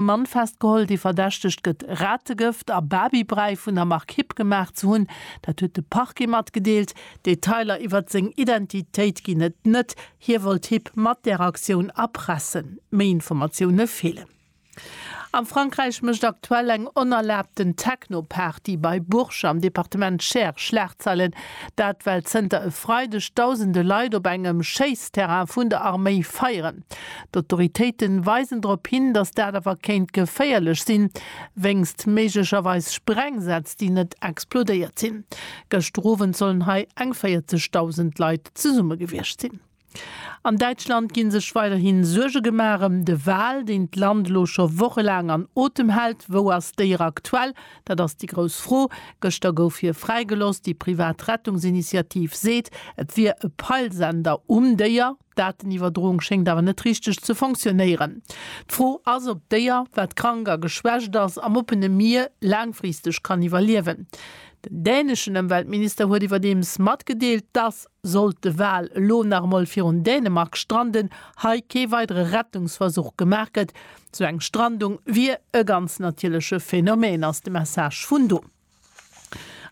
Mann festgeholl, déi verdächtegt gëtt, Rategëft a Barbie-Bräi vun der Mark Hipp gemaach ze hunn. Dat huet de Parquet matgedeelt. Detailer iwwert seng Identitéit ginn et net. Hie wollt Hipp mat där Aktioun erpressen. Méi Informatioune feelen. Am Frankräich mécht aktuell eng onerlaabten Techno-Party bei Bourges am Departement Cher Schlagzeilen. Dat well zënter e Freideg dausende Leit op engem Schéissterrain vun der Arméi feieren. D'Autoritéiten weisen drop hin, datt dat awer kéint geféierlech sinn, wéinst méiglecherweis Sprengsätz, déi net explodéiert sinn. Gëschter Owend sollen hei eng 40.000 Leit zesumme gewiescht sinn. An Däitschland gi sech weiderhi Suerge gemaach ëm de Wal, deen d'Land elo scho wochelaang an Otem hält. Wou ass d'Déier aktuell? Dat ass déi grouss Fro. Gëschter gouf hie fräigelooss. Déi privat Rettungsinitiativ seet, et wier e Peilsender um Déier. D'Daten-Iwwerdroung schéngt awer net richteg ze fonctionnéieren. D'Fro ass, ob d'Déier, wat krank a geschwächt ass, am oppene Mier laangfristeg kann iwwerliewen. Den däneschen Ëmweltminister huet iwwerdeems matgedeelt, dass, sollt de Wal elo nach emol virun Dänemark stranden, hei kee weidere Rettungsversuch gemaach gëtt. Sou eng Strandung wier e ganz natierleche Phänomen, ass de Message vun do.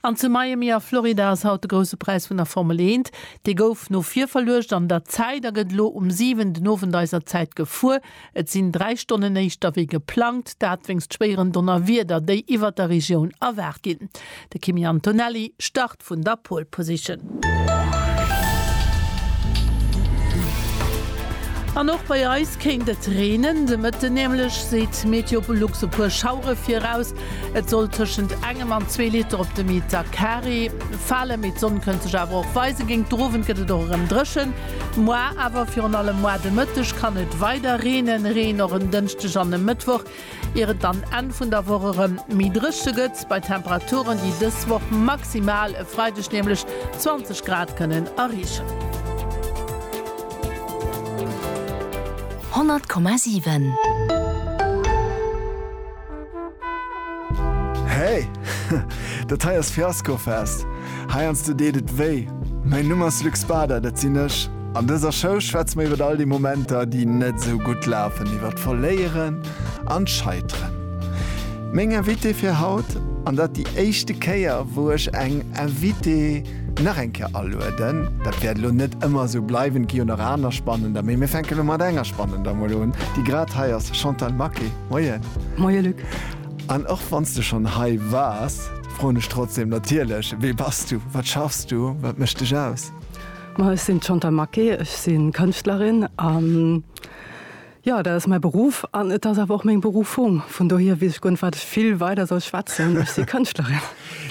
An zu Miami a Florida ass haut de grousse Präis vun der Formel eent. Dee gouf no vir verluecht an der Zäit a gëtt elo um 7 den Owend eiser Zäit gefuer. Et sinn 3 Stonnen éischter wéi geplangt, dat wéinst schwéieren Donnerwieder, déi iwwert der Regioun erwaart ginn. De Kimi Antonelli start. Start vun der Pole Position. An och bei eis kéint et reenen. De Mëtten nämlech seet MeteoLux e puer Schauere viraus. Et soll tëschent engem an zwee Liter op de Meter Carré falen, mee d'Sonn kënnt sech awer och weisen. Géint d'Owend gëtt et och erëm dréchen. Muar awer, virun allem muar de Mëtteg, kann et weider reenen. Reen och en Dënschdeg an e Mëttwoch. Ier et dann Enn vun der Woch erëm méi dréche gëtt, bei Temperaturen, déi dës Woch maximal e Freideg nämlech 20 Grad kënnen erreechen. 100,7. Hey! Dat hei ass Fiaskofest! Heiansdo deet et wéi. Mäin Numm ass Luc Spader, dat sinn ech. An dëser Show schwätze mer iwwer all déi Momenter, déi net esou gutt lafen, iwwer d'Verléieren an d'Scheiteren. Meng Invitée fir haut, an dat déi éischte Kéier, wou ech eng Invitée nach eng Kéier alueden, dat wäert elo net ëmmer esou bleiwen, et gi jo nach aner spannender, mee mir fänke elo mat enger spannender mol un, déi grad hei ass, Chantal Maquet, Moien. Moie Luc. An och wann s de schonn hei waars, Froen ech trotzdem natierlech, Wee bass du? Wat schaffs du? Wat mécht dech aus? Ma ech sinn d'Chantal Maquet, ech si Kënschtlerin a jo, dat ass mäi Beruff an et ass awer och meng Berufung. Vun dohier weess ech guer net, wat ech vill weider soll schwätzen. Ech si Kënschtlerin.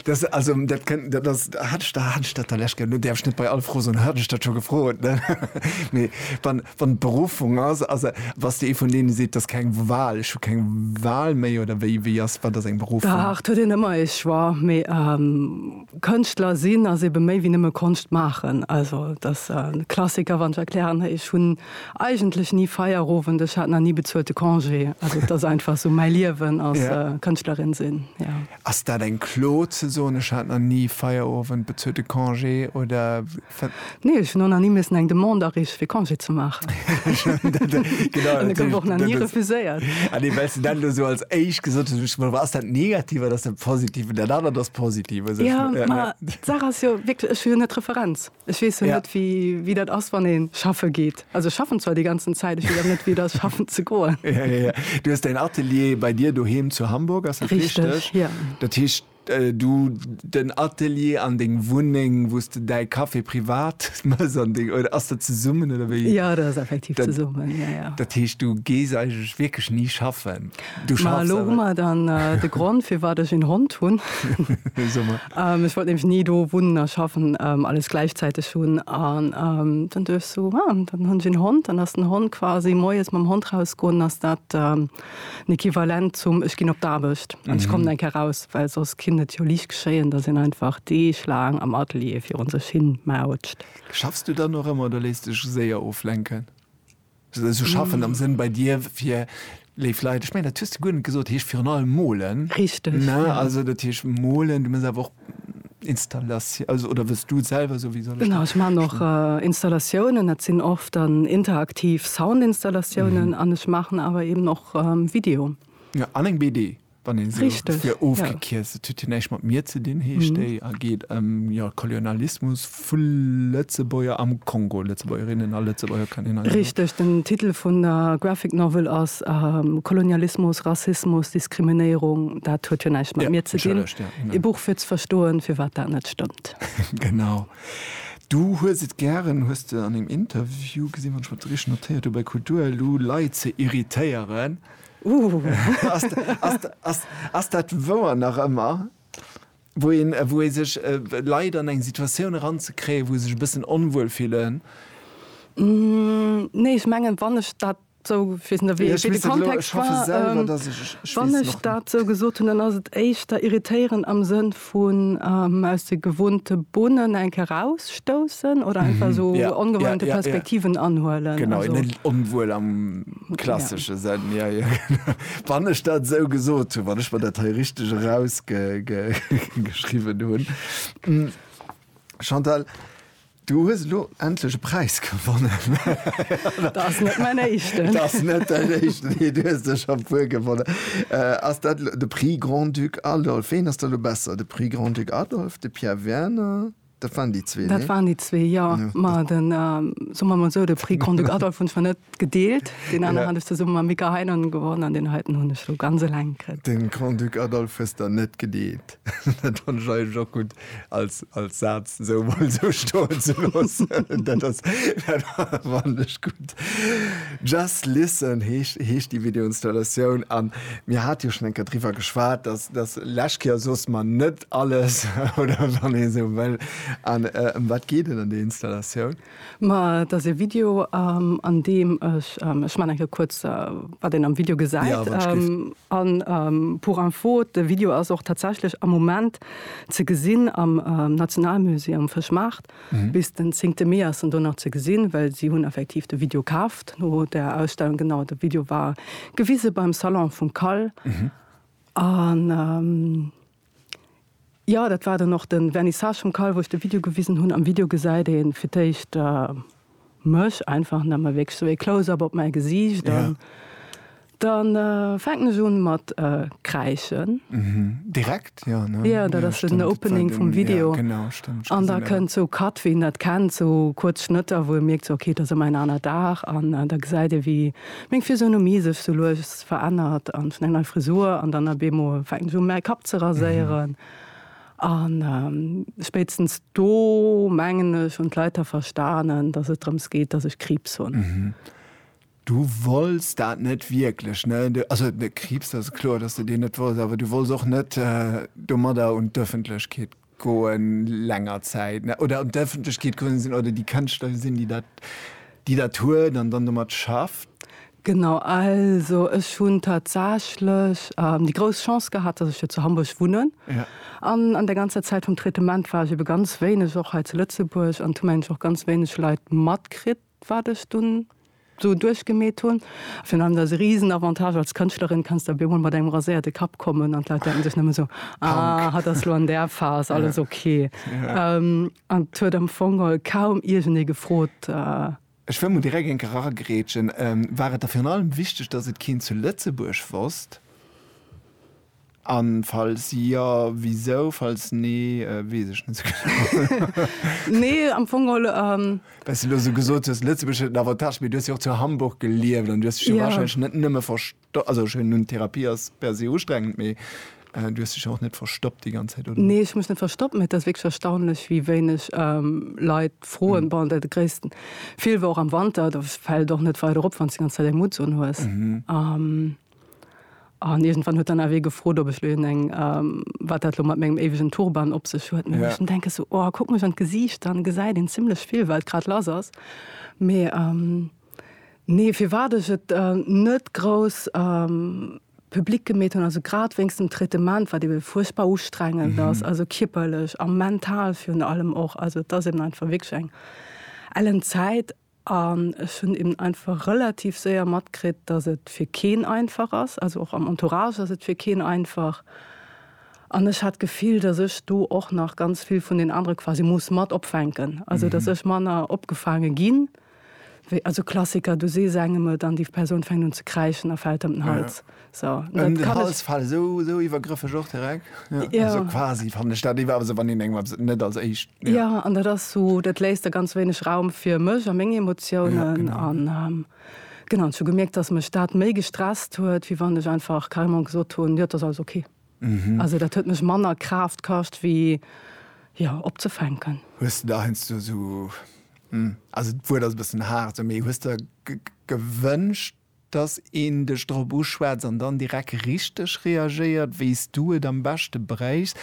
Dat also, dat kënnt, dat ass, hat ech, hat ech dat da lech, lo däerf ech net bei all Fro soen, hat ech dat scho gefrot, ne? Mee wann. Wann d'Beruffung ass, ass se. Wa s de ee vun deene seet, 't ass keng Wahl, ech hu keng Wahl méi, oder wéi, wéi ass, wat ass eng Beruffung? Dach, 't huet een ëmmer ee Choix, mee Kënschtler sinn ass eebe méi wéi nëmme Konscht maachen. Also, 't ass e Klassiker, wann ech erklären, Hey, ech hunn eigentlech ni Feierowend, ech hat nach ni bezuelte Congé. Also, 't ass einfach esou mäi Liewen als Kënschtlerin sinn, jo. Ass dat eng Klo, ze soen, ech hat nach ni Feierowend, bezuelte Congé, oder? Nee, ech hun och nach ni missen eng Demande areeche fir Congé ze maachen. Dat gouf och nach ni refuséiert. Ah nee, well s de dat elo esou als éischt gesot hues, duerch ech mer, ass dat negativ oder ass dat positiv? An dat anert ass positiv. Also ech, Jo, ma d'Saach ass jo wierklech, ech hu jo net d'Referenz. Ech weess jo net, wéi, wéi dat ass, wann ee schaffe geet. Also ech schaffen zwar déi ganzen Zäit, ech weess awer net, wéi et ass, schaffen ze goen. Ja, ja, ja. Du hues däin Atelier bei dir doheem zu Hamburg, ass dat richteg? Richteg, jo. Dat heescht, Du den Atelier an deng Wunneng, wou s de däi Café privat méchs an deng, oder ass dat zesummen oder wéi? Jo, dat ass effektiv zesummen, jo, jo. Dat heescht, du gees eigentlech wierklech ni schaffen? Du schaffs awer. Ma elo hu mer dann de Grond, firwat ech een Hond hunn. Soe mer. Ech wollt nämlech ni do wunnen a schaffen, alles gläichzäiteg hunn. An dann duecht ech esou, ah, dann hunn ech een Hond, dann ass den Hond quasi, moies mam Hond rausgoen, ass dat. en Equivalent zum Ech ginn op d'Aarbecht an ech kommen eng Kéier raus, well soss kinnt et jo liicht geschéien, datt een einfach deeglaang am Atelier virun sech hin mautscht. Schaffs du dann och ëmmer oder léiss dech séier oflenken? Also schaffen am Sënn bei dir fir léif Leit, ech mengen dat hues de guer net gesot, heescht virun allem molen. Richteg, jo. Also dat heescht molen, du muss awer och. Installation, also oder wëlls du selwer esou wéi soll ech Genau, ech maachen och Installatiounen, dat sinn oft dann interaktiv Soundinstallatiounen an ech maachen awer eben och Video. Ja, an eng BD, wann een esou Richteg, fir ja. ofgekierzt. Et huet jo näischt mat mir ze dinn, heescht déi a geet ëm, jo, Kolonialismus. Vu Lëtzebuerger am Kongo, Lëtzebuergerinnen a Lëtzebuerger kann een also. Richteg, den Titel vun der Graphic Novel ass Kolonialismus, Rassismus, Diskriminéierung. Dat huet jo näischt mat mir ze dinn. Ee Buch fir ze verstoen, firwat dat net stëmmt. Genau. Du hues et gären, hues de an engem Interview gesinn, wann ech mer dat richteg notéiert hu bei Kulturelu, Leit ze irritéieren. Ass dat wouer nach ëmmer? wou ee sech Leit an eng Situatioun eranzekréien, wou se sech e bëssen onwuel fillen. Nee, ech mengen, wann ech dat esou, ech weess net, wéi de Kontext war, wann ech dat esou gesot hunn, dann ass et éischter irritéieren am Sënn vun aus de gewohnte Bunnen eng Kéier erausstoussen oder einfach esou ongewohnte Perspektiven anhuelen. Genau, net onwuel am. Klassesche Sënn, jo, jo. Wann ech dat esou gesot hunn, wann ech mer dat hei richteg erausgeschriwwen hunn. Chantal, du hues elo endlech e Präis gewonnen. Dat ass net mäin éischten. Dat ass net däin éischten, nee, du hues der scho e puer gewonnen. Ass dat de Prix Grand-Duc Adolphe? Ween ass da elo besser, de Prix Grand-Duc Adolphe, de Pierre Werner, Dat waren déi zwee, Dat nee? waren déi zwee, jo. Jo, Ma dat. den, soe mer emol esou, de Prix Grand-Duc Adolphe hunn zwar net gedeelt, deen aneren hat ech zesumme mam Mika Heinonen gewonnen an deen heiten hunn ech elo ganz eleng kritt. De Grand-Duc Adolphe hues der net gedeelt. Dat fannt ech eigentlech och gutt als, als Saz esou emol esou stoen ze loossen. Dat ass, dat fannt ech gutt. Just Listen heescht, heescht déi Videoinstallatioun. A mir hate jo schonn eng Kéier driwwer geschwat, dass, dass lech Kéier soss mer net alles oder wann ee sou wëll. An ëm wat geet et an där Installatioun? Ma et ass e Video an deem ech, ech man eng Kéier kuerz wat een am Video gesäit, an pour info, de Video ass och tatsächlech am Moment ze gesinn am Nationalmusée um Fëschmaart. Bis den zéngte Mee ass en do nach ze gesinn, well si hunn effektiv de Video kaaft no där Ausstellung. Genau, de Video war gewise beim Salon vum Kall. An jo, dat war dann och de Vernissage vum Call, wou ech de Video gewisen hunn. Am Video gesäit ee fir d'éischt mech einfach nëmme wierklech sou ee Close-up op mäi Gesiicht. An da fänken ech un mat kräischen. Direkt, jo, ne? Jo, dat ass den Opening vum Video. An da kënnt sou Cut, wéi een dat kennt, sou kuerz Schnëtter, wou ee mierkt, sou, okay, et ass ëmmer en aner Dag. An da gesäit ee, wéi meng Physionomie sech sou lues. Gesicht verännert an vun eng nei Frisur an dann ab eemol fänkt se u mäi Kapp ze raséieren. An spéitstens do, mengen ech, hunn d'Leit da verstanen, datt et drëms geet, datt ech Kriibs hunn. Du wolls dat net wierklech, ne? Also Kriibs, dat ass kloer, datt s de deen net wolls, awer du wolls och net domadder un d'Ëffentlechkeet Goen länger Zäit ne oder un d'Ëffentlechkeet gerunnen sinn oder déi Kënschtler sinn, déi dat déi dat huet an dann domat schafft? Genau, also ech hunn tatsächlech déi grouss Chance gehat, datt ech jo zu Hamburg wunnen. Ja. An an der ganzer Zäit vum Traitement war ech ebe ganz wéineg och hei zu Lëtzebuerg an hu mengen ech och ganz wéineg Leit matkritt. wat ech dunn sou duerchgemeet hunn. Virun allem ass e risen Avantage als Kënschtlerin, kanns de op eemol mat engem raséierte Kapp kommen an d'Leit denken sech nëmme sou, ah, hatt ass lo an där Phas, alles ok. An et huet am Fong kaum iergendee gefrot. Ech wëll mol direkt eng Kéier eragrätschen, War et der virun allem wichteg, datt et keen zu Lëtzebuerg wosst? An falls jo, wisou? Falls nee, wees ech net sou genau. Nee, am Fong geholl. Well s du elo sou gesot hues, Lëtzebuerg huet en Avantage, mee du hues jo och zu Hamburg gelieft an du hues dech jo warscheinlech net nëmme verstoppt, also ech hunn, Therapie ass per se ustrengend, mee du hues dech jo och net verstoppt déi ganz Zäit, oder? Nee, ech hu mech net verstoppt, mee et ass wierklech erstaunlech, wéi wéineg Leit froen. Bon, de gréissten Feel war och am Wanter, do fält et och net weider op, wann s du déi ganz Zäit eng Mutts unhues. An iergendwann huet dann awer ee gefrot, ob ech lo een eng, wat dat lo mat mengem éiwegen Turban op sech huet. Mee ech denke sou, oh, kuckt mech an d'Gesiicht, dann gesäit een zimlech vill, wat grad lass ass. Mee nee, firwat ech et net grouss public gemeet hunn, also grad wéinst dem Traitement, wat ebe fuerchtbar ustrengend ass, also kierperlech a mental virun allem och. Also et ass eben einfach wierklech eng ellen Zäit. An ech hunn eben einfach relativ séier matkritt, dass et fir keen einfach ass, also och am Entourage ass et fir keen einfach. An ech hat d'Gefill, dass ech do och nach ganz vill vun den anere quasi muss mat opfänken, also dass ech manner opgefaange ginn, wéi, also Klassiker, du sees engem et an déi Persoun fänkt un ze kräischen a fält ëm den Hals. So, den Hals fallen, so, so iwwergrëffeg och direkt. Ja. Ja. Also quasi fan de Stadt iwwer se wann den engem net als éischt. Ja. ja an dat ass so dat léist der ganz wéineg Raum fir mech a menge Emotionen ja, genau. an ähm, genau zu gemerkt, dass mech dat méi gestresst huet, wie wann ech einfach Kalmon gesot hunn ja, das alles okay. Mhm. Also dat huet mech manner Kraft kascht wie ja opzefänken. Hues du da hest du so hm, also d'Wuert ass bëssen hart, méi hues der gewënscht Dass een dech drop uschwätzt an dann direkt richteg reagéiert, wéi s du et am beschte bréichs.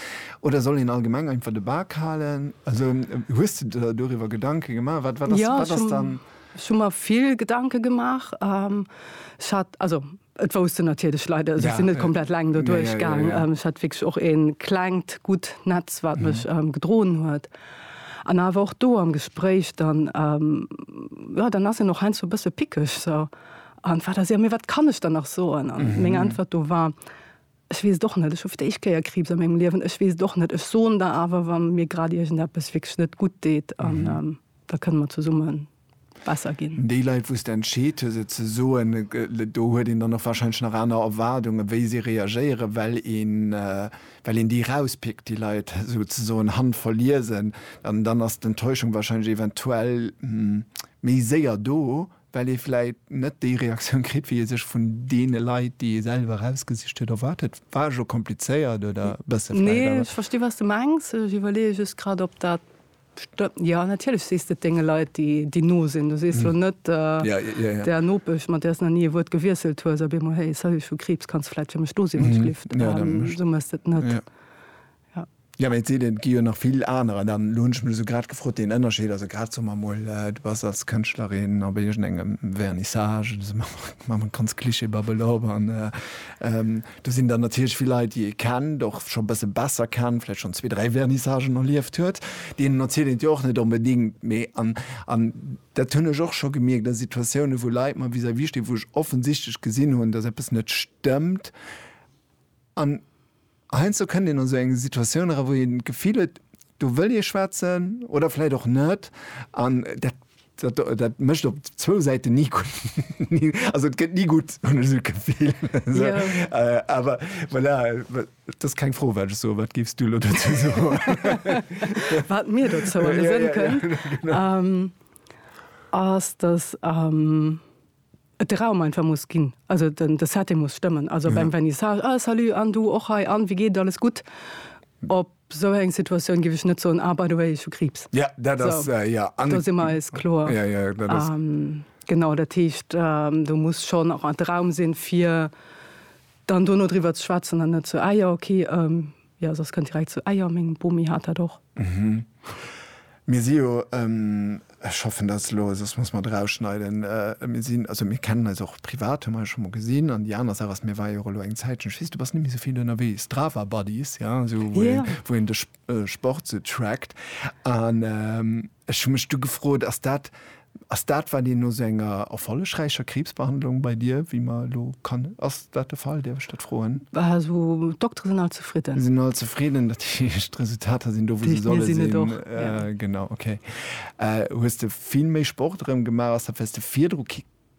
Oder soll een allgemeng einfach de Bak halen? Also hues de der doriwwer Gedanke gemaach? Wat, wat ass, wat ass dann. Jo, ech hu mer vill Gedanke gemaach. Ech hat, also et wousst en natierlech Leit, also ech sinn net komplett eleng doduerch gaang. Ech hat wierklech och e klengt, gutt Netz, wat mech gedroen huet. An awer och do am Gespréich, dann, jo, dann ass een och heiansdo e bësse pickeg, so, an wat ass, jo, mee wat kann ech dann nach soen? An meng Äntwert do war, Ech weess et och net, ech hu fir d'éischt Kéier Kriibs a mengem Liewen, ech weess et och net. Ech soen der awer, wa mir grad iergendeppes wierklech net gutt deet, an da kënne mer zesumme besser gin. Déi Leit wous de entscheet hues et ze soen, do huet een dann och wahrscheinlech nach aner Erwaardungen wéi si reagéieren, well een well een déi rauspickt, déi Leit sou ze soen handverliesen, an dann ass d'Enttäuschung wahrscheinlech eventuell méi séier do, well ee vläit net déi Reaktioun kritt wéi ee sech vun deene Leit, déi ee selwer erausgesicht huet, erwaart huet. War ech elo komplizéiert oder e bësse vläit? Nee, ech versti wat s de mengs. Ech iwwerleeë just grad op dat Jo, natierlech sees de et denge Leit, déi no sinn. Du sees jo net der Nopesch, mat där s nach ni e Wuert gewiesselt hues, op eemol, Hey, salut, ech hu Kriibs, kanns du vläit fir mech do sinn, Uschlift? Esou méchs de et net. Jo, mä et seet een, et gi jo nach vill anerer. Dann elo hunn ech mech esou grad gefrot, deen Ënnerscheed, also grad soe mer emol, du bass als Kënschtlerin op iergendengem Vernissage, elo soe mer, maache mer ganz Klischeebabbel op, an Do sinn dann natierlech vill Leit, déi ee kennt, och scho e bësse besser kennt, vläicht schonn zwee, dräi Vernissagen erlieft huet. Deenen erzielt een et jo och net onbedéngt. Mee, an, an dat hunn ech och scho gemierkt a Situatiounen, wou Leit mer vis-à-vis stinn, wou ech offensichtlech gesinn hunn, datt eppes net stëmmt. An heiansdo kënnt een an esou eng Situatioun era, wou een d'Gefill huet, do wëll ee schwätzen oder vläicht och net. An dat Dat, dat mécht op zwou Säiten ni gutt. Also et gëtt ni gutt, hunn ech esou d'Gefill. Esou. Yeah. Awer voilà, dat ass keng Fro, wat ech soen. Wat géifs du elo dozou soen? Wat mir dozou alles sënn kënn, ass, datt. et de Raum einfach muss ginn, also den de Setting muss stëmmen, also beim Vernissage, ah salut an du och hei an wéi geet et, alles gutt? Op esou eng Situatioun géif ech net soen, ah by the way ech hu Kriibs. Jo, dat ass, jo. Do si mer eis kloer. Jo, jo, dat ass. Genau, dat heescht do muss schonn och de Raum sinn, fir dann dono driwwer ze schwätzen an net sou, ah jo, okay. Jo, soss kënnt direkt zu Eier. Meng Bomi hat dat och. Mhm. Mir si jo, ech hoffen, dat ass elo, soss muss mer et erausschneiden, mir sinn, also mir kennen eis och privat, hu mer eis scho mol gesinn. An déi aner Saach ass, mir ware jo och elo eng Zäitchen, ech weess, du bass net méi esou vill ënnerwee, Strava Buddies, jo, esou wou een, wou een de Sport esou trackt. An ech hu mech du gefrot, ass dat Ass dat wat een no sou enger erfollegräicher Kriibsbehandlung bei dir, wéi mer elo kann, ass dat de Fall, däerf ech dat froen? Also d'Doktere sinn all zefridden. Sinn all zefridden, dat heescht d'Resultater sinn do wou se solle sinn. Genau, ok. Hues de vill méi Sport erëm gemaach? Ass dat well s de virdru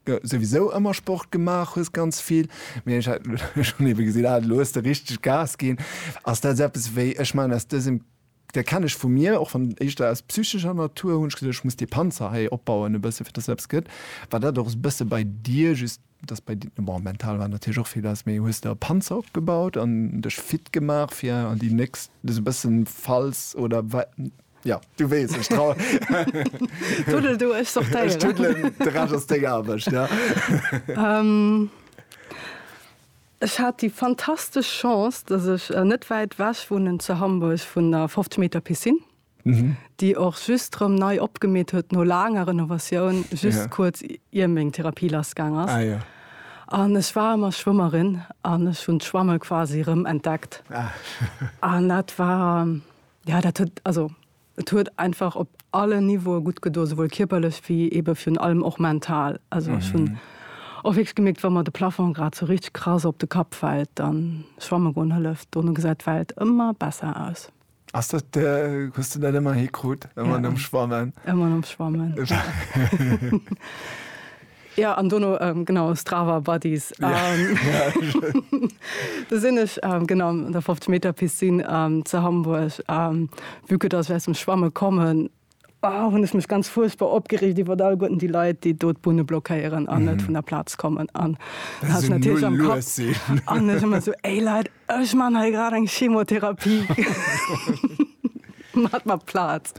souwisou ëmmer Sport gemaach hues, ganz vill, mee ech hat elo schonn ebe gesinn, ah elo hues de richteg Gas ginn. Ass dat sou eppes wéi, ech maachen aus dësem Dee kennen ech vu mir, och wann éischter aus psychescher Natur, hunn ech gesot, ech muss dee Panzer hei opbauen e bësse fir dass eppes gëtt, war dat och e bësse bei dir, just dass bei dir, bon mental war natierlech och vill lass, mee hues de e Panzer opgebaut an dech fit gemaach fir an déi nächst, sou e bëssen falls oder wa, jo du weess, ech trau. Tuddel du, ech sortéieren. Ech tuddelen, de Rescht ass deng Aarbecht, jo. Ech hat déi fantastesch Chance, dass ech net wäit wech wunnen zu Hamburg vun der 50 Meter Piscine, déi och just rëm nei opgemeet huet no laanger Renovatioun, just kuerz ier meng Therapie lass gaang ass. An ech war ëmmer Schwëmmerin an ech hunn d'Schwamme quasi rëm entdeckt. An dat war, jo, dat huet, also. Et huet einfach op allen Niveaue gutt gedoen, souwuel kierperlech wéi eebe virun allem och mental. Also ech hunn och wierklech gemierkt, wa mer de Plafong grad sou richteg krass op de Kapp fält, da schwamme goen hëlleft. Dono gesäit d'Welt ëmmer besser aus. Ass dat de, hues de dat ëmmer hikrut, ëmmer nom Schwammen? Ëmmer nom Schwammen. Ja an dono genau Strava Buddies do sinn ech genau an der 50 Meter Piscine ze Hamburg vue que dass ech aus dem Schwamme kommen hunn ech mech ganz fuerchtbar opgereegt iwwert alleguerten déi Leit, déi do d'Bunne blockéieren an net vun der Plaz kommen an hat natierlech am Kapp an ech ëmmer esou, Ey Leit! Ech man hei grad eng Chemotherapie mat mat Plaz.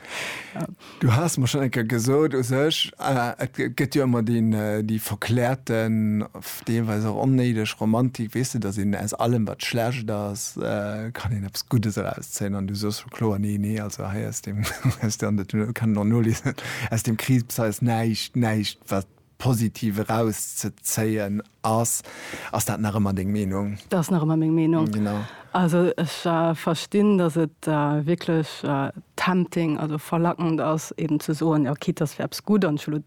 Du has mer schon enker gesot u sech äh, et gëtt jo ëmmer deen äh, déi verklärten, deelweis och onnéideg Romantik, weess de, datt een aus allem wat schlecht ass, äh, kann een eppes Guddes erauszéien an du soos scho kloer, nee, nee, also hei aus deem, aus deem, an dat kann een och noliesen, aus deem Kriibs hei ass näischt, näischt wat Positiv eraus ze zéien ass. Ass dat nach ëmmer deng Meenung? Dat ass nach ëmmer meng Meenung. Genau. Also ech verstinn, datt et wierklech tempting, also verlackend ass eeben ze soen, jo quitte dass fir eppes gutt an ech hu lo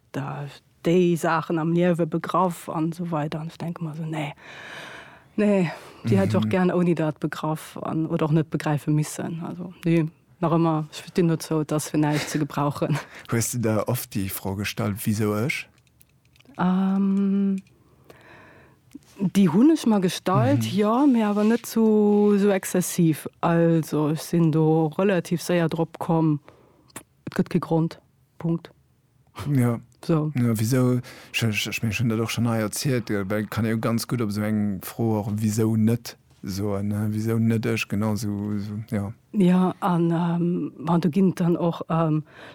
déi Saachen am Liewe begraff an esou weider an ech denke mer esou, nee, nee, déi hätt ech och gären ouni dat begraff an oder och net begräife missen. Also nee, Nach ëmmer, ech stinn dozou, et ass fir näischt ze gebrauchen. Hues de der oft déi Fro gestallt, Wisou ech? Déi hunn ech mer gestallt, jo, mee awer net sou exzessiv. Also ech sinn do relativ séier drop komm, et gëtt kee Grond. Punkt. Jo. So. Jo, wisou, ech, ech, ech mengen, ech hunn dat och schonn hei erzielt, gell, well et kann ee jo ganz gutt op esou eng Fro och wisou net soen, ne, wisou net ech, genau sou, sou, jo. Jo, an bon, do ginn et dann och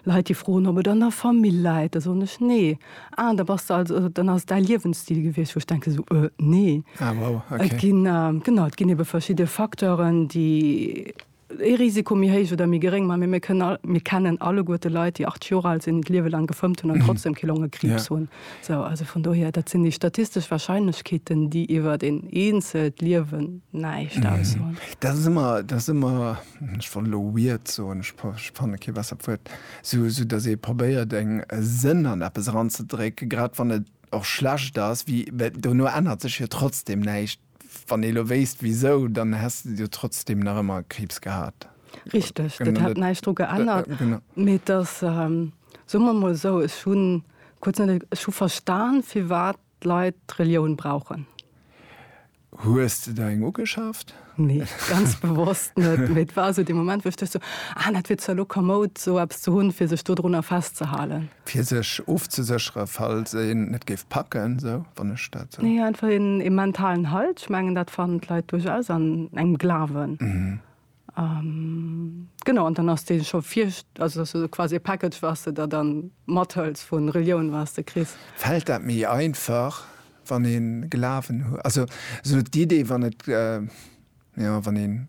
Leit, déi froen, ob et an der Famill läit. Da soen ech, Nee. Ah, da bass de also, also dann ass et däi Liewensstil gewiescht, wou ech denke sou, Äh, nee. Ah, wow, okay. Et ginn, genau, et ginn ebe verschidde Facteuren, déi. ee Risiko méi héich oder méi geréng, mä mir kënnen all, mir kennen alleguerte Leit, déi 80 Joer al sinn, d'Liewe laang gefëmmt hunn an trotzdem kee Longekriibs hunn. Sou, also vun dohier, dat sinn déi statistesch Warscheinlechkeeten, déi iwwert een eenzelt Liewen näischt aussoen. Dat ass ëmmer, dat ass ëmmer, ech wollt elo weird soen, ech fanne kee bessert Wuert, sou, sou datt ee probéiert eng, e Sënn an eppes eranzedrécken, grad wann et och schlecht ass, wéi, well dono ännert sech jo trotzdem näischt. Wann ee lo wéisst wisou, dann häss de jo trotzdem nach ëmmer Kriibs gehat. Richteg, dat hätt näischt dru geännert. Mee et ass, soe mer emol esou, ech hu kuerz net, ech hu verstan, firwat d'Leit d'Relioun brauchen. Hues de der eng ugeschaaft? Nee, ganz bewosst net. Mee et war esou dee Moment, wou ech duecht esou, ah, dat wier zwar lo komoud, esou eppes ze hunn, fir sech dodrunner festzehalen. Fir sech ofzesécheren, falls een et géif packen, esou, wann ech dat esou. Nee, einfach een, ee mentalen Halt. Ech mengen, dat fannen d'Leit duerchaus an engem Glawen. Genau, an dann ass dee scho vir, also dass du quasi e Package, was de der dann mathëls vu Relioun, was de kriss. Fält dat méi einfach, wann ee Glawen huet? Also esou d'Idee, wann et, jo, wann een.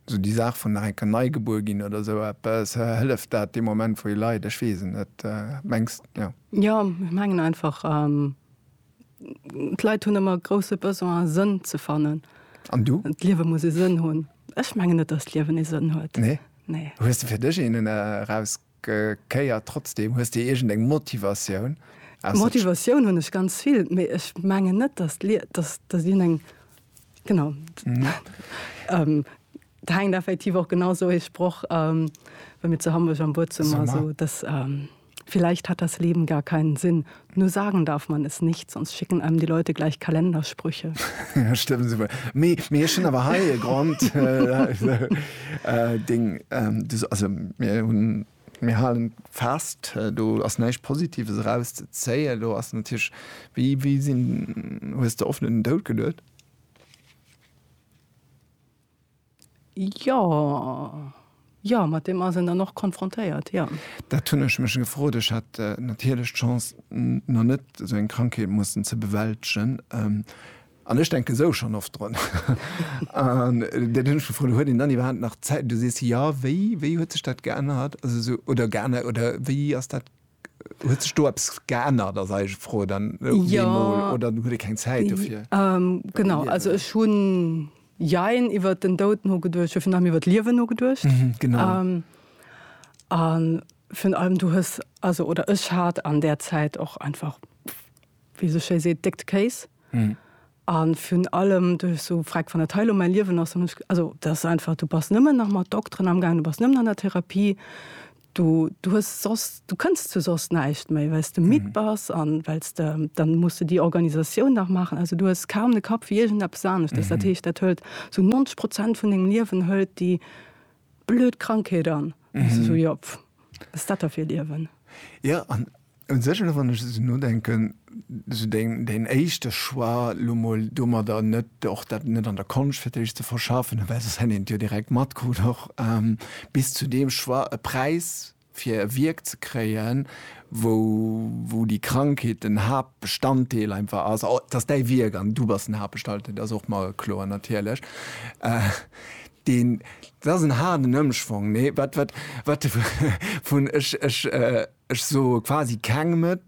Sou déi Saach vun nach eng Kéier nei gebuer ginn oder sou eppes, hëlleft dat dee Moment wou ee leit? Ech weess et net, mengs jo? Jo, ech mengen einfach d'Leit hunn ëmmer e grousse Besoin Sënn ze fannen. An du? D'Liewe muss e Sënn hunn. Ech mengen net, datt d'Liewen ee Sënn huet. Nee? Nee. Hues de fir dech een eraus Kéier trotzdem? Hues de iergend eng Motivatioun? Motivatioun hunn ech ganz vill, mee ech mengen net, datt d'Lied, datt dien eng genau et hänkt effektiv och genau esou ee Sproch wéi mir zu Hamburg am Buedzummer, esou dass vielleicht hat das Leben gar keinen Sinn, Nur sagen darf man es nicht, sonst schicken einem die Leute gleich Kalendersprüche. ja, stimmt super. Mir, mir schon aber hei Grund äh, äh, Ding, ähm, das, also mir hun mir halen fest äh, du ass neisch positives raus ze zéie du ass den Tisch wie wie sinn hues der offenen Dout gelet Jo, jo, mat deem ass een dann och konfrontéiert, jo. Dat hunn ech mech gefrot. Ech hat natierlech d'Chance, nach net esou eng Krankheet mussen ze bewältegen. An ech denken esou schonn oft drun. An dat hunn ech gefrot, huet een dann iwwerhaapt nach Zäit? Du sees jo. Wéi, wéi huet sech dat geännert? Also esou, oder geännert, oder wéi ass dat, huet sech do eppes geännert, ass eis Fro dann op eemol, oder huet ee keng Zäit dofir? Genau, also ech hunn. Jein, iwwert den Doud nogeduecht, jo, virun allem iwwert d'Liewen nogeduecht. Mhm, genau. A virun allem du hues, also oder ech hat an där Zäit och einfach, wéi sou schéi seet, déckt Kéis. Mhm. A virun allem du hues sou gefragt, wann dat hei elo mäi Liewen ass, dann hunn ech, also dat ass einfach, du bass nëmmen nach mat Dokteren amgaangen, du bass nëmmen an der Therapie, Du, du hues soss, du kënns zu soss näischt méi, well s de midd bass an well s de, dann muss de déi Organisatioun nach maachen. Also du hues kaum de Kapp fir iergendeppes aneschtes. Dat heescht, dat hëlt sou 90 Prozent vun dengem Liewen hëlt déi blöd Krankheet an. An du sou, jo, pff, wat ass dat da fir e Liewen? Jo, an Un sech, elo wann ech esou nodenken, esou deen éischte Choix, elo mol domadder net, och dat net an der Konscht fir d'éischt ze verschaffen, well soss hätt een et jo direkt matkrut och, bis zu deem Choix, e Präis fir e Wierk ze kréien, wou déi Krankheet den Haaptbestanddeel einfach ass, et ass däi Wierk an du bass den Haaptbestalddeel, dat ass och mer kloer natierlech, deen, dat ass en haarden Ëmschwong, nee, wat, wat, wat, vun, ech, ech. Ech soe quasi kengem et,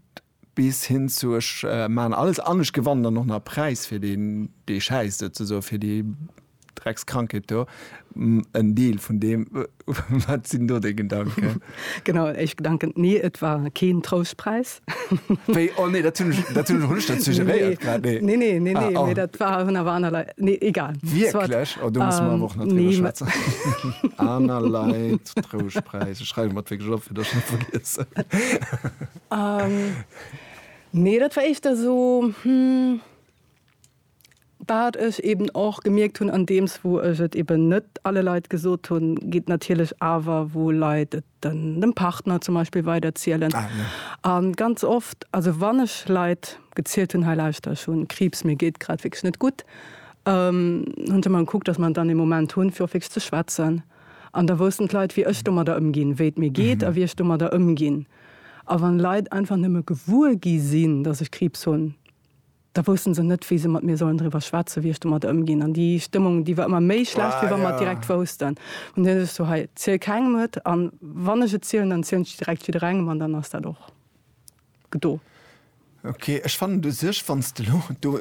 bis hin zu ech maachen alles an ech gewannen dann och nach e Präis fir deen, dee schäisst, souzesoen, fir déi Dreckskrankheet do. En Deel vun deem. Wat sinn do déi Gedanken? Genau, en éischt Gedanken, Nee, et war keen Troustpräis. Wéi? Oh nee, dat hunn ech, dat hunn ech och net dat suggeréiert grad, nee. Nee, nee, nee, nee, mee dat war, hunn awer aner Leit, nee, egal. Wierklech? Oh, do musse mer awer och nach driwwer schwätzen. Aner Leit. den Trouschtpräis. Ech schreiwe mer et wierklech op, fir dass ech net vergiessen. Nee, dat war éischter esou, wat ech eeben och gemierkt hunn, andeems wou ech et eeben net alle Leit gesot hunn, geet natierlech awer, wou Leit et dem Partner zum Beispill weiderzielen. A ganz oft, also wann ech Leit gezielt hunn, hei lauschter, ech hu Kriibs, mir geet grad wierklech net gutt, hunn se mer gekuckt, dass mer dann ee Moment hunn, fir och wierklech ze schwätzen. An da woussten d'Leit, wéi ech domadder ëmginn, wéi et mir geet a wéi ech domadder ëmginn. A wann Leit einfach nëmme gewuer gi sinn, datt ech Kriibs hunn, da wousste se net, wéi se mat mir sollen driwwer schwätzen, wéi ech domadder ëmginn. An déi Stëmmung, déi war ëmmer méi schlecht, wéi wa mer et direkt woussten. An dunn hu sech sou, hei, ziel kengem et, an wann ech et zielen, dann zielen ech et direkt jidderengem, an dann ass dat och. do. Ok, ech fannen u sech, wann s de elo do,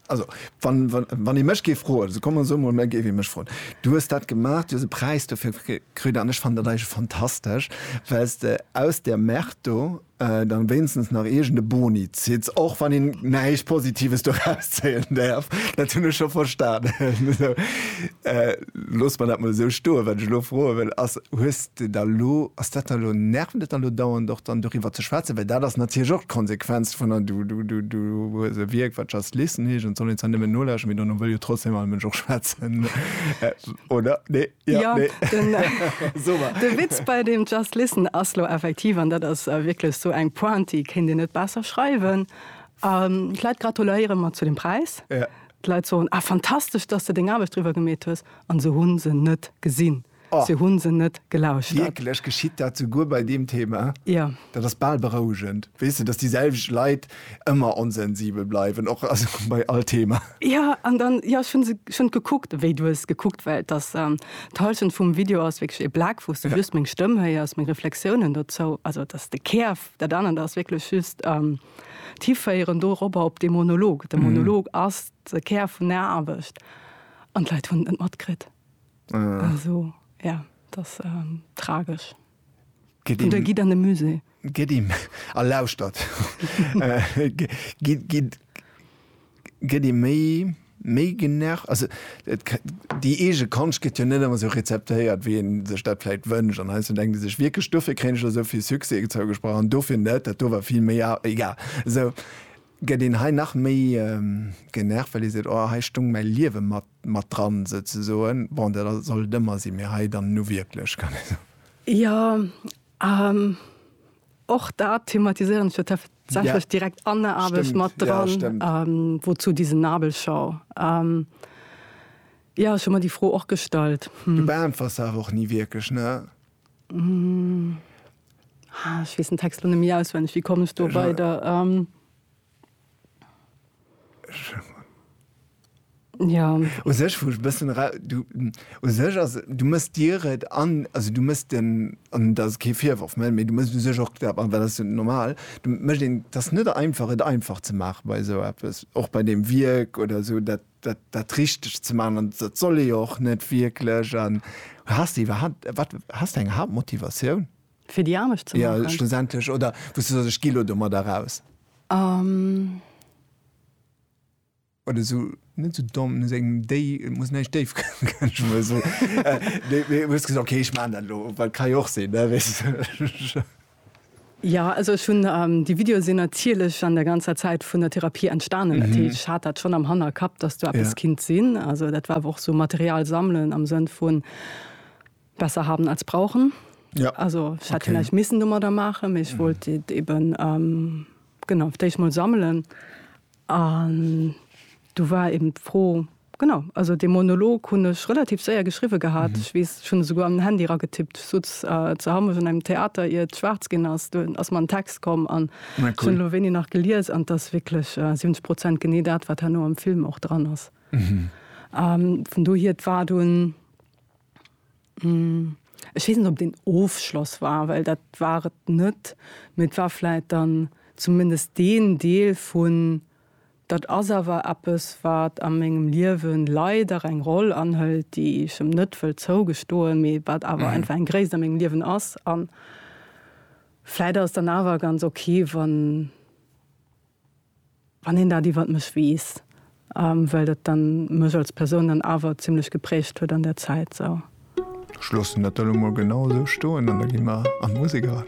also wann ee mech géif froen, also kommen esou mol, mä géif ee mech froen, du hues dat gemaach, du hues e Präis dofir kritt an ech fannen dat eigentlech fantastesch, well s de aus där Merde do da wéinstens nach iergend e Boni zitt's, och wann een näischt Positives doraus zéien däerf, dat hunn ech scho verstanen. loosse mer dat mol esou stoen, wat ech elo froe wëll ass, hues de da elo, ass dat da elo, nervt et da elo dauernd och dann doriwwer ze schwätzen, well dat ass natierlech och d'Konsequenz vun der, du, du, du, du hues e Wierk wat Just Listen heescht an et soll een zwar nëmmen nolauschteren, mee dono wëll jo trotzdem all Mënsch och schwätzen, oder? Nee? Jo, Ja, nee? den, Super. de Witz bei dem Just Listen ass lo effektiv, an dat ass äh, wierklech esou eng Pointe, déi kéint een net besser schreiwen, ähm, d'Leit gratuléiere mer zu dem Präis, Ja. D'Leit soen, Ah, fantastesch, dass de deng Aarbecht driwwer gemeet hues. An se hu se net gesinn. Oh. Se hu se net gelauschtert. Wierklech? Geschitt dat souguer bei deem Thema? Jo. Dat ass bal berouegend. Weess de, dass déi selwecht Leit ëmmer onsensibel bleiwen, och, also bei all Thema. Jo, an dann, jo, ech hu se schonn gekuckt, wéi du hues gekuckt, well dass d'Hallschent vum Video ass wierklech ee Black, wou s de just meng Stëmm héiers, meng Reflexiounen dozou, also dass de Kär, dat anert ass wierklech just. d'hiféieren doropper op dee Monolog. De Monolog ass de Kär vun der Aarbecht an d'Leit hunn et net matkritt. Also ja, et ass tragesch. An da gitt an de Musée. Gitt a lauschtert. Gitt. Gëtt ee méi méi genervt? Also et déi eege Konscht gëtt jo net ëmmer esou rezeptéiert wéi een sech dat vläicht wënscht an heiansdo denkt ee sech wierklech dofir kréien ech elo esou vill Succès zougesprach an dofir net, dat do war vill méi a. Egal. Esou gëtt een hei nach méi genervt, well ee seet oh hei stoung mäi Liewe mat mat dran souzesoen. Bon dat ass soll et ëmmer sinn, mee hei dann nu wierklech kann ee soen. Jo, Och dat thematiséieren ech jo tatsächlech direkt an der Aarbecht mat dran, Wozu diese Nabelschau? Jo, ech hu mer déi Fro och gestallt. Du beäntwers se awer och ni wierklech, ne? Ech weess den Text elo net méi auswenneg. Wéi komm ech do weider? Ja. U sech, wou ech bëssen ra, du, u sech ass, du mëss dir et an, also du mëss den, an dat ass kee Virworf, mä du mëss u sech och, mä dat ass jo normal, du mécht een, et ass net einfach et einfach ze maache bei esou eppes, och bei deem Wierk oder esou dat, dat, dat richteg ze maachen an dat soll ee jo och net wierklech. An has de iwwerhaapt, wat, has de eng Haaptmotivatioun? Fir déi anescht ze maachen? Jo, schlussendlech. Oder wou s du soss, ech gi lo domat eraus. Um. Oder esou, net esou domm, no sengem déi, et muss näischt déif kënnen. Mee esou, mee, mee hues gesot, okay, ech maachen dat elo, well et ka jo och sinn, ne, weess de. Jo, also ech hunn, déi Videoe sinn natierlech an der ganzer Zäit vun der Therapie entstanen. Dat heescht, ech hat dat schonn am Hannerkapp, dass do eppes kinnt sinn. Also dat war awer och esou Material sammelen am Sënn vun, Besser haben als brauchen. Ja. Also ich hätte okay. vielleicht missen dummer da machen, ich mhm. wollte eben ähm, genau ich mal sammeln. Und du war eben froh genau also den Monolog hun ich relativ sehr geschrieben gehabt. Mhm. Ich weiß schon sogar am Handy ra getippt so äh, zu haben in einem Theater ihr schwarz gehen hast du aus meinem Text kommen an cool. schon wenig nach geliers an das wirklich äh, 70 Prozent gene dat war nur am Film auch dran ist. Mhm. Ähm, von du hier war du ein Ech weess net, ob et een Ofschloss war, well dat war et net. Mee et war vläit dann zumindest deen Deel vun, dat ass awer eppes, wat a mengem Liewe leider eng Roll anhëlt, déi ech em net wëll zougestoen, mee wat awer einfach eng Gréisst a mengem Liewen ass. A vläit ass et dann awer ganz ok, wann. Wann een dat iwwert mech weess, well dat dann mech als Persoun dann awer zimlech geprägt huet an der Zäit sou. Ech loossen dat elo mol genau esou stoen an da gi mer an d'Musek eran.